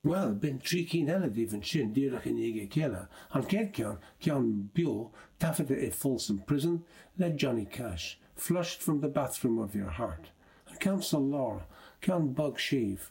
Bhuel, b'in trí cinn eile díobh ansin díreach i ndiaidh a chéile, an chéad cheann, ceann beo, taifeadta i Folsom Prison, le Johnny Cash, Flushed From The Bathroom Of Your Heart, an ceann sa lár, ceann bog séimh,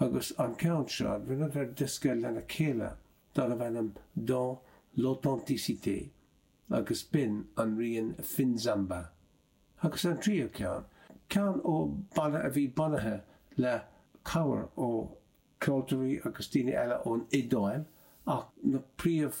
agus an ceann seo rinneadar diosca lena chéile darbh ainm Dans l'authenticité agus b'in an rian Finzamba. Agus an tríú ceann, ceann ó bhanna a bhí bunaithe le cabhair ó cheoltóirí agus daoine eile ón Iodáil ach na príomh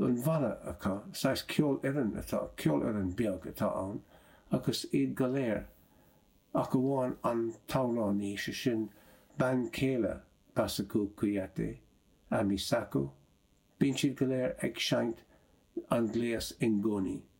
an bhanna acu, saghas ceolfhoireann atá, ceolfhoireann beag atá ann agus iad go léir ach amháin an t-amhránaí, sé sin bean chéile Bassekou Kouyaté, Amy Sacko, bíonn siad go léir ag seinnt an gléas ngoni.